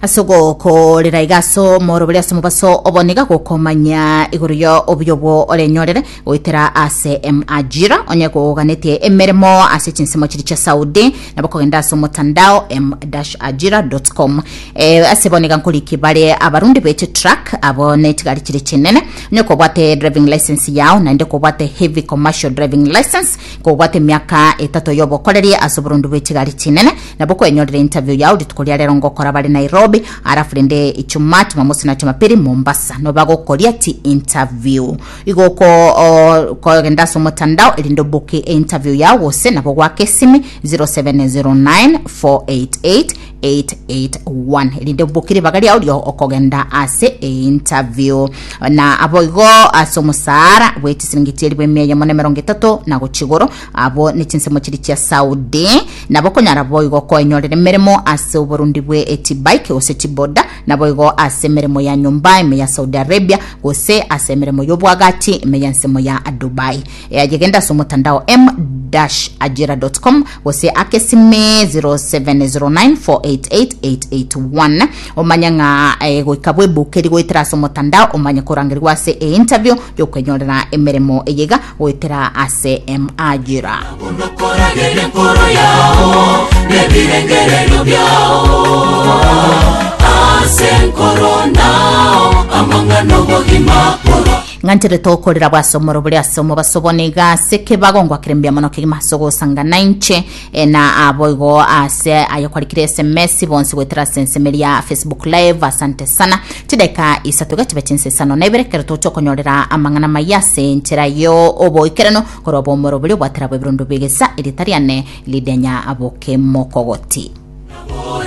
ase ogokorera iga ase omorobori ase omobaso obo niga gokomanya igoro ya obuya obwo orenyorere goetera ase em- ajira onye koganetie emeremo ase chinsemo chiri chia saudi nabo kogenda ase omotandao m-ajira.com eh, ase bo niga nkoriki bare abarundi bete truck abo netigari chiri chinene onye kobwate driving license yao naende kobwate heavy commercial driving license kobwate emiaka etato yobokoreri ase oborundi bwetigari chinene Nabo kwenyorera interview yao rituko ria rero ngokora bare Nairobi arafu rende ichuma chimamosi na chumapiri Mombasa no bagokoria ti interview igo oko- okogenda ase omotandao erinde oboke e interview yao gose nabo gwake esimi 0709 488 881 erinde oboke ribaga riao rio okogenda ase e interview na abo igo ase omosara bwe chisiringi chieri bwe emia eyemo na emerongo etato na gochia igoro Abwo ne chinsemo chiri chia Saudi nabo konyara boigo koenyorera emeremo ase oborundi bwe echibike gose chiboda naboigo ase emeremo ya nyomba ime ya Saudi Arabia gose ase emeremo y'obwagachi ime ya ensemo ya Dubai. Eaye genda ase omotandao m-ajira.com gose ake esime 0709488881 omanye ng'a eh, goika bwebukeri goetera ase omotandao omanye korangerigwa ase e interview y'okwenyorera emeremo eyega goetera ase emajira. Unokoragere enkoro yao nebirengererio biao ase enkoro nao amang'ana obogima korwa Ng'ancherete okorera bw'asomoro bore ase omobaso bone iga ase ekebago ngwakerembia mono kegima ase ogosangana inche Ena aboigo ase ayo kwarikire SMS bonsi goetera ase ensemo eria Facebook Live. Asante sana. Chideka isato iga chibe chinsa isano na ibere kero toche okonyorera amang'ana maya ase enchera yo oboikeranu korwa obomoro boria obwatera bw'ebirondo bigesa erieta riane ridenya bokemokogoti.